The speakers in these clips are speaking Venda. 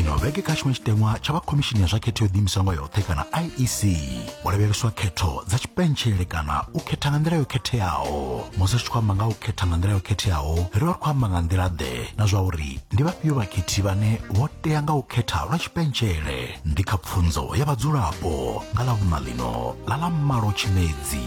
ino vhege kha tshiṅwe tshiteṅwa tsha vha khomishini ya zwa khetho yo ḓiimisaho nga yoṱhe kana iec ho lavheleswa khetho dza tshipentshele kana u khetha nga nḓila yo khetheaho musi ri tshi khou amba nga u khetha nga nḓila yo khetheaho ri vha ri khou amba nga nḓila ḓe na zwa uri ndi vhafhio vhakhethi vhane vho tea nga u khetha lwa tshipentshele ndi kha pfunzo ya vhadzulapo nga ḽa vhuṋa ḽino ḽa ḽa malo tshimedzi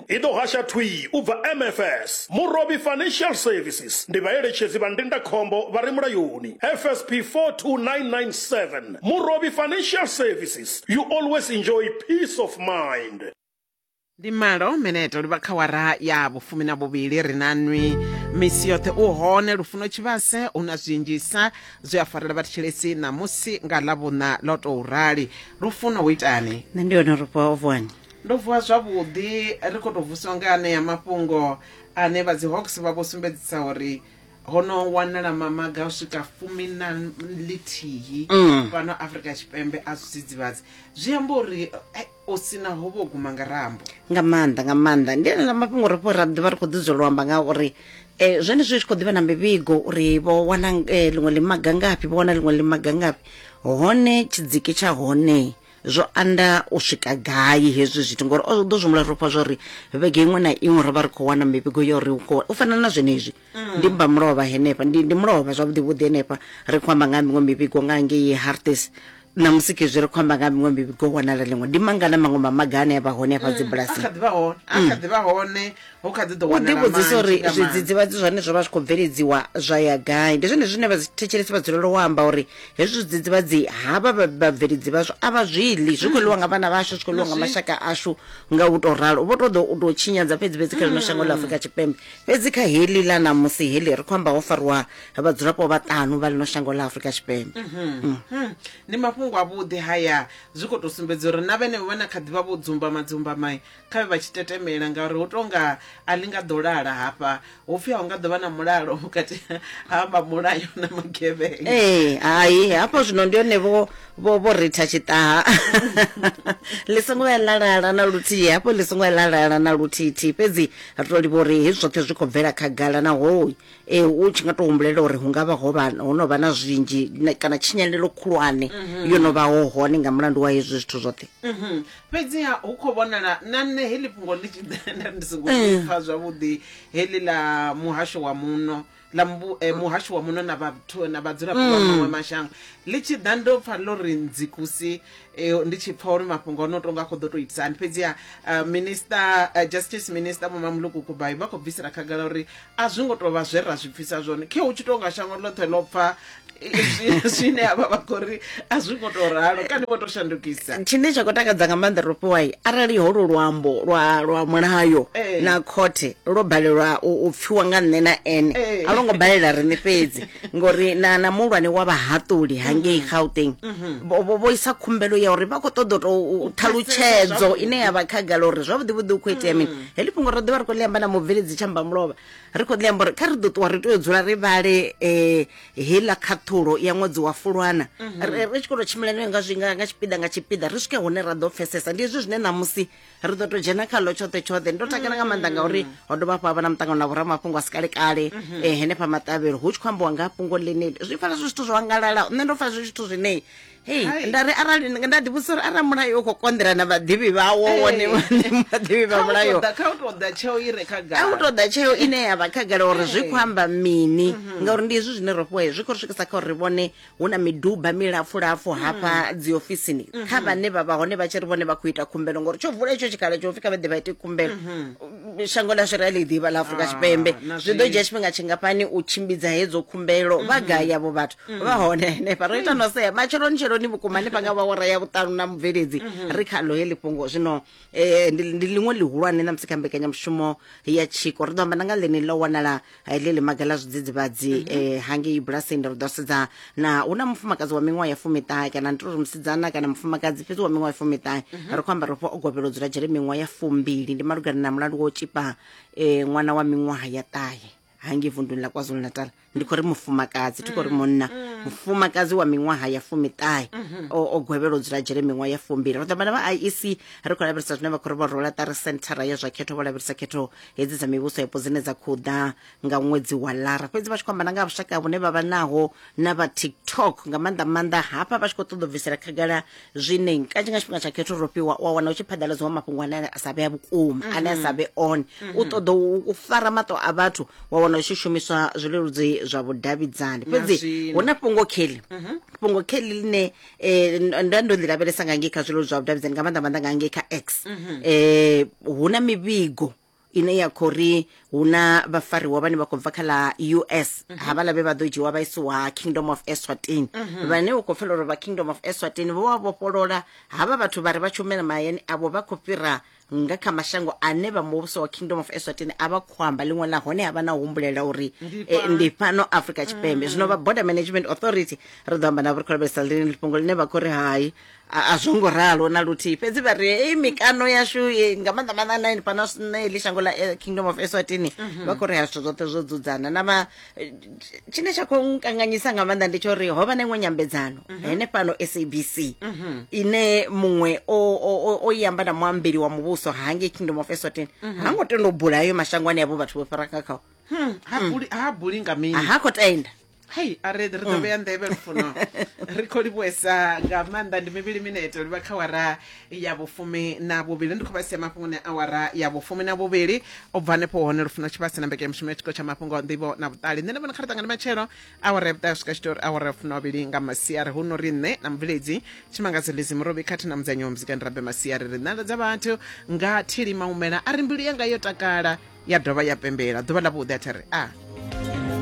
I ḓo hasha thwii u bva MFS, Murovhi Financial Services, ndi vhaeletshedzi vha ndindakhombo vha re mulayoni, FSP 42997, Murovhi Financial Services, you always enjoy peace of mind. Ndi malo mineto livha kha wara ya vhufumi na vhuvhili ri na nwi misi yoṱhe u hone lufuno tshivhase hu na zwinzhisa zwi a farela vha thetshelesi ṋamusi nga ḽa vhuṋa ḽo tou rali lufuno hu itani nṋe ndi hone rufha o vuwani Ndo vuwa zwavhuḓi ri khou tou vuswa nga anea mafhungo ane vha dzi Hawks vha vho sumbedzisa uri ho no wanala mamaga u swika fumi na ḽithihi mm. fhano afrika tshipembe a zwidzidzivhadzi zwi amba uri eh, o sina ho vho guma nga rambo nga maanḓa nga maanḓa ndi ene ḽa mafhungo ri fho ra ḓivha ri khou ḓi zwela amba nga uri um zwone zwi tshi khou ḓivha na mivhigo uri vho wana eh, ḽiṅwe ḽimaga ngafhi vho wana ḽiṅwe ḽimaga ngafhi hone tshidziki tsha hone zwo anda u swika gai hezwi zwithu ngori o ḓo zwi humbula ro pfa zwa uri vhege iṅwe na iṅwe ro vha ri khou wana mivhigo ya uri u fana na zwenezwi mm. ndi mba mulovha henefha ndi ndi mulovha zwavhuḓi vhuḓi henefha ri khou amba nga miṅwe mivhigo nga ngei hartes na musi khezwi ri khou amba nga miṅwe mivhigo wanala ḽiṅwe ndi mangana maṅwe mamaga ane a vha hone afha mm, dzibulasini a kha ḓi vha hone a kha mm. ḓi vha hone u ḓivhudzisa uri zwidzidzivhadzi zwane zwo vha zwi khou bveledziwa zwa ya gai ndi zwone zwine vhathetshelesi vha dzulela u amba uri hezwi zwidzidzivhadzi havha vhabveledzi vhazwo a vha zwi ḽi zwi khou ḽiwa nga vhana vhashu zwi khou ḽiwa nga mashaka ashu nga u tou ralo vho tou ḓo u tou tshinyadza fhedzi fhedzi kha ḽino shango ḽa afurika tshipembe fhedzi kha heḽi ḽa ṋamusi heḽi ri khou amba ho fariwa vhadzulapo vhaṱanu vha ḽino shango ḽa afurika tshipembe ndi mafhungo avhuḓi haya zwi khou tou sumbedza uri na vhene vha na kha ḓivha vho dzumba madzumba mai kha vhe vha tshi tetemela ngauri hu tonga a ḽi nga ḓo lala hafha hu pfhi a hu nga ḓo vha na mulalo vhukati ha vha mulayo na magevhenga ee hai hafho zwino ndi hone vho vho vho ritha tshiṱaha ḽi songo ya lalala na luthihi hafho ḽi songo ya lalala na luthihi fhedzi ri to livha uri hezwi zwoṱhe zwi khou bvela khagala naho e u tshi nga to humbulela uri hu nga vha ho vha ho no vha na zwinzhi kana tshinyalelo khulwane mhm. yo no vha ho hone nga mulandu wa hezwi zwithu zwoṱhe mhm. fhedziha hu khou vhonala na nṋe heḽi fhungo ḽi tshi ḓa nda ndi songo Eh. pfa zwavhuḓi heḽi ḽa muhasho wa muno ḽa mbu- eh, muhasho wa muno na vhathu na vhadzulapo vha Mm. maṅwe mashango ḽi tshi ḓa ndo pfa ḽo ri ndzikusi eh, ndi tshi pfa uri mafhungo ono tonga a khou ḓo tou itisani fhedziha eh, minister eh, justice minister vho mamuluku kubai vha khou bvisela khagala uri a zwi ngo tou vha zwe ra zwi pfisa zwone khe hu tshi tou nga shango ḽoṱhe ḽo pfa zwine avha vha khou ri a zwi ngo tou ralo kani vho tou shandukisa tshine tsha khou takadza nga maanḓa ro fhiwai arali holo luambo lwa lwa mulayo eh. na khothe lwo balelwa u pfiwa nga nṋe na ene eh. a lwo ngo balela riṋe fhedzi ngori na na muhulwane wa vhahaṱuli hangei mm-hmm. gauteng mm-hmm. vho isa khumbelo ya uri vha khou ṱoḓa u tou thalutshedzo ine ya vha khagala uri zwavhuḓi vhuḓi u khou itea mini mm. heḽi fhungo ro ḓivha ri khou ḽi amba na mubveledzi tshamba mulovha ri khou ḽi amba uri kha ri ḓo ṱuwa ri tea u dzula ri vhale um heiḽa khaṱhulo ya ṅwedzi wa fulwana mhm. ri tshi khou tou tshimbila nayo nga zwinga nga tshipiḓa nga tshipiḓa ri swike hune ra ḓo pfesesa ndi hezwi zwine ṋamusi ri ḓo tou dzhena khaḽo tshoṱhe tshoṱhe ndo takala nga maanḓa ngauri mm. ho dovha hafhu ha vha na muṱangano na vhoramafhungo a si kale kale um mhm. eh, henefha maṱavhelo hu tshi khou ambiwa nga fhungo ḽeneli zwi pfala zwi zwithu zwo angalala nṋe ndo pfala zwi zwithu zwine hei nda ri arali nda ḓi vhudzisa uri arali mulayo u khou konḓela na vhaḓivhi vhawo wone vhaḓivhi vha mulayo a u tou ḓa tsheo ine ya vha khagala uri zwi khou amba mini mhm. ngauri ndi hezwi zwine ro fhiwa zwi khou ri swikisa kha uri vhone hu na miduba milapfulapfu mhm. hafha dzi ofisini mhm. kha vhane vha vha hone vha tshi ri vhone vha khou ita khumbelo ngori tsho vula itsho tshikhala tsho pfi kha vha ḓe vha ite khumbelo shango ḽashu ra ḽi ḓivha ḽa afurika ah, tshipembe zwi ḓo dzhia tshifhinga tshingafhani u tshimbidza hedzo khumbelo vha gai yavho vhathu mm. vha hone henefha ro ita no sea matsheloni tsheloni vhukuma hanefha nga vhawara ya vhuṱanu na mubveledzi mm-hmm. ri kha lohe ḽifhungo zwino um ndi ḽiṅwe ḽihulwane na musi kha mbekanyamushumo ya tshiko ri ḓo amba na nga ḽene ḽo wanala eh, ḽe ḽi maga ḽa zwidzidzivhadzi um mm-hmm. eh, hangei bulasini ri ḓo sedza na hu na mufumakadzi wa miṅwaha ya fumiṱahe kana ndi to ri musidzana kana mufumakadzi fhedzi wa miṅwaha ya fumiṱahe mm-hmm. ri khou amba ri fho o govhela u dzula dzhele miṅwaha ya fumbili ndi malugana na mulandu wa u tshipa um ṅwana wa miṅwaha ya ṱahe hangi vunduni la kwazulu-natal ndi khou ri mufumakadzi thi khou ri munna mufumakadzi wa miṅwaha ya fumiṱahe o o gwevhela u dzula dzhele miṅwaha ya fumbili ro ṱambana vha iec ri khou lavhelesa zwine vha khou ri vho rola ṱari senthara ya zwa khetho vho lavhelesa khetho hedzi dza mivhuso yapo dzine dza khou ḓa nga ṅwedzi wa lara fhedzi vha tshi khou amba na nga ha vhushaka vhune vha vha naho na vha tiktok nga maanḓa maanḓa hafha vha tshi khou ṱoḓa u bvisela khagala zwine kanzhi nga tshifhinga tsha khetho ro fhiwa wa wana u tshi phaḓaladziwa mafhungo ane a sa vhea vhukuma ane a sa vhe one u ṱoḓa u- u fara maṱo a vhathu wa wana u tshi shumiswa zwileludzi zwa vhudavhidzani fhedzi zwino. hu na fhungo kheli fhungo kheli line eh, ndo- ndo ndo ḽi lavhelesa nga ngei kha zwileludzi zwa vhudavhidzani nga maanḓa maanḓa nga ngei kha x eh, hu na mivhigo ine ya khou ri hu na vhafariwa vhane vha khou bva kha ḽa us mhm. havhaḽa vhe vha ḓo dzhiwa vha isiwa kingdom of eswatini mhm. vhane u khou pfela uri vha kingdom of eswatini vho vha vhofholola havha vhathu vha ri vha tshi humela mahayani avho vha khou fhira nga kha mashango ane vha muvhuso wa kingdom of eswatini a vha khou amba ḽiṅwe ḽa hone ha vha na humbulela uri eh, ndi fhano afrika tshipembe mm. zwino vha border management authority ri ḓo amba na vhurikholobesa ḽine ḽifhungo ḽine vha khou ri hai A, a zwo ngo ralo na luthihi fhedzi vha ri hei mikano yashu ye- nga maanḓa maanḓa na ini fhano na heḽi shango ḽa eh, kingdom of eswatini vha khou ri ha zwithu zwoṱhe zwo dzudzana na ma eh, tshine tsha khou nkanganyisa nga maanḓa ndi tsho uri ho vha na iṅwe nyambedzano henefhano sabc ine muṅwe o o- o- o i amba na muambeli wa muvhuso hangei kingdom of eswatini ha ngo tenda u bula ayo mashango ane avho vhathu vho fhira nga khao ha buli ha buli nga mini ha khou tenda hei a ri ri ḓo vhea nḓevhe lufuno ri khou livhuesa nga maanḓa ndi mivhili mineto livha kha wara ya vhufumi na vhuvhili ndi khou vha sia mafhungoni a wara ya vhufumi na vhuvhili u bva hanefho hone lufuno tshivhasi na mbekanyamushumo ya tshiko tsha mafhungo nḓivho na vhuṱali nṋe ndi vhona kha ri ṱangane matshelo awara ya vhuṱae swika tshitori awara ya funa vhavhili nga masiari hu no ri nṋe na mubveledzi tshimangadzo lizi murobi khathihi na mudzanyiwa muzika ndi rabe masiari ri nḓala dza vhathu nga thili maumela a ri mbilu yanga yo takala ya dovha ya pembela ḓuvha ḽa vhuḓi a thi ri a